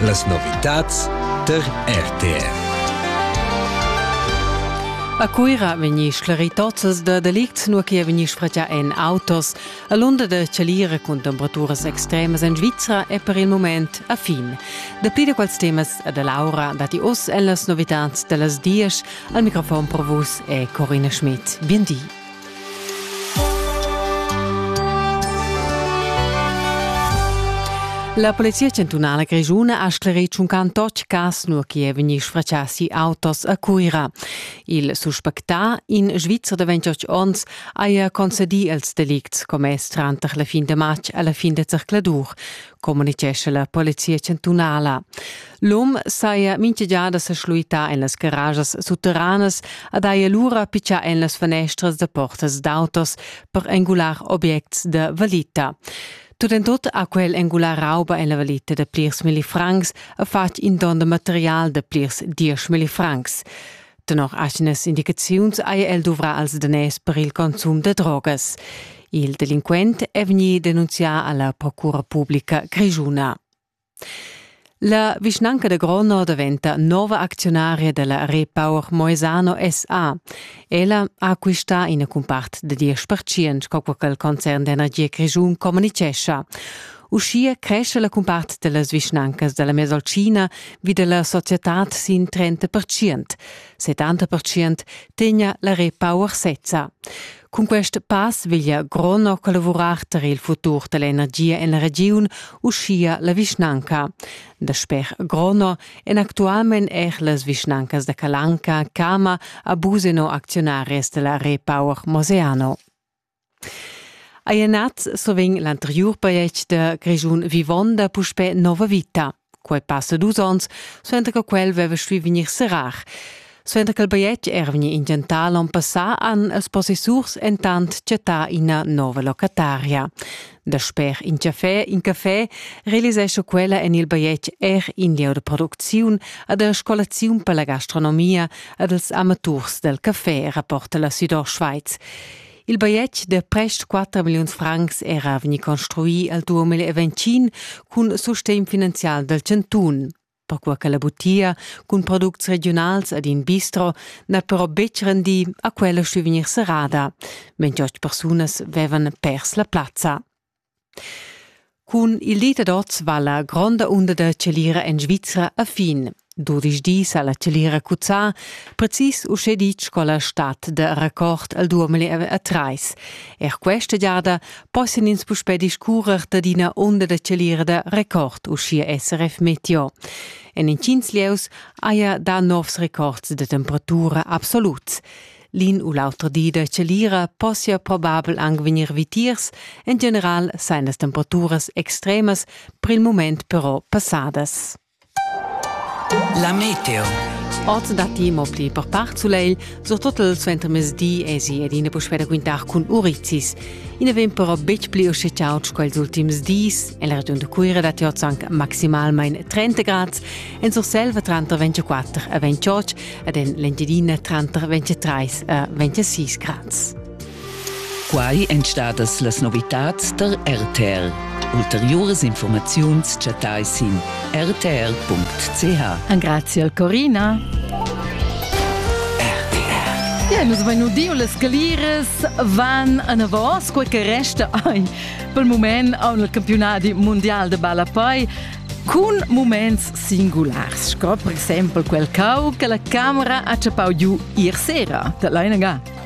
Las novitads tar RTR. A Cuira vegni sclerì tozzas da delicts, nua che vegni sfratgà en autos. A l'unda da Chalira cun temperaturas extremas en Svizra è per il moment a fin. Dapli da quels temas da Laura datti oz en las novitads da las dies. Al microfon per vus è Corina Schmidt. Bien di. La Polizia chantunala grischuna ha sclerì tschuncan tot cas nua che è vegnì sfratschà si autos a Cuira. Il suspectà, in Svizzer de 28 onns, haja concedì els delicts commess tranter la fin de matg e la fin de zercladur. communitgescha la polizia chantunala. L'um saja mincha giada sa schluità en las garajas sutteranas ad haja lura pitschà en las fanestras da portas d'autos per engular objects da valita. Tut en tut ha quel engular rauba en la valita da plirs milli francs e fatg in don da material da plirs diesch milli francs. Tenor atgnas indicaziuns hai el duvrà als daners per il consum da drogas. Il delinquent è vegnì denunzià a la Procura pubblica grischuna. La vischnanca da Grono daventa nova acziunaria della Repower Moesano SA. Ella ha acquistà ina cumpart da 10% sco quel concern d'energia grischun communicescha. Uschia cresce la cumpart da las vischnancas da la Mesolcina vi da la societad sin 30 percent. 70 percent tegna la repower sezza. Cun quest pass veglia Grono collavurar tar il futur da l'energia en la regiun, uschia la vischnanca. Dasper Grono èn actualmain er las vischnancas da Calanca, Cama, a Buseno acziunaris da la Repower Moseano. Eir nat sovegn l'anteriur pajais da Grischun vivonda puspè nova vita. Quai passa dus ons, suenter che quel veva stuì vegnir serrar. Suenter che il bajetg era vegnì intentà l'on passà han els possessurs entant chattà ina nova locataria. Dasper in café, in café realisescha quella en il bajetg er in lieu da producziun ad la scolaziun per la gastronomia ad els amaturs del café, rapporta la Südostschweiz. Il bajetg de prest 4 milliuns francs era vegni construì al 2020 cun sustegn finanzial del Cantun. perquai che la butia cun products regiunals ed in bistro n'ha però betg rendì a quella stuì vegnir serrada, mentre ost persunas vevan pers la plazza. Cun il dit ad oz va la gronda unda da celira en Svizra a fin. Dudisch dis ha la celira cuzzà, precis uschè ditg sco la stad da record al duameli a trais. Er questa giada Possian ins puspè discurrer dad ina onda da celira da record, uschia SRF Meteo. En intgins lieus haja dà novs records da temperatura absoluts. L'in u l'auter di da celira possia probabel anc vegnir vitiers, en general sain las temperaturas extremas per il mument però passadas. La meteo. Oz datti mo pli per part sulegl, surtut il suentermezdi esi ed ina puspè da quintar cun urizis. I na vegn però betg pli uschè chaud sco ils ultims dis. En la regiun da Cuira datti oz anc maximalmain 30 grads, en Surselva tranter 24 e 28 ed en l'Engiadina tranter 23 e 26 grads. Quai èn stadas las novitads tar RTR. Ulteriuras informaziuns chattai sin rtr.ch. Grazie Corina. Ja, nus vein udiu las scaliras van anavos, quei che resta ei pel moment a un campionati mondial de ballapei cun moments singulars, sco per exempel quel cau che la camera ha chappau giu ier sera, da Leinaga.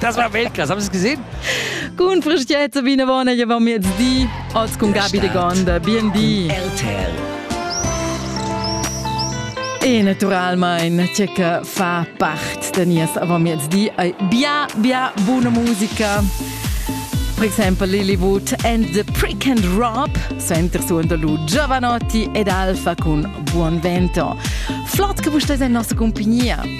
Das war Weltklasse, haben Sie es gesehen? Gut, frisch jetzt, Sabine Warner, hier waren wir jetzt die. Als con Gabi de Gonda, BND. RTL. E naturalmente che fa parte di nies Avamiezdi è bia bia buona musica. Per esempio Lillywood and the Prick and Rob sente suondo lu Giovanotti ed Alfa con Buon Vento. Flott che vostra è in nostra compagnia.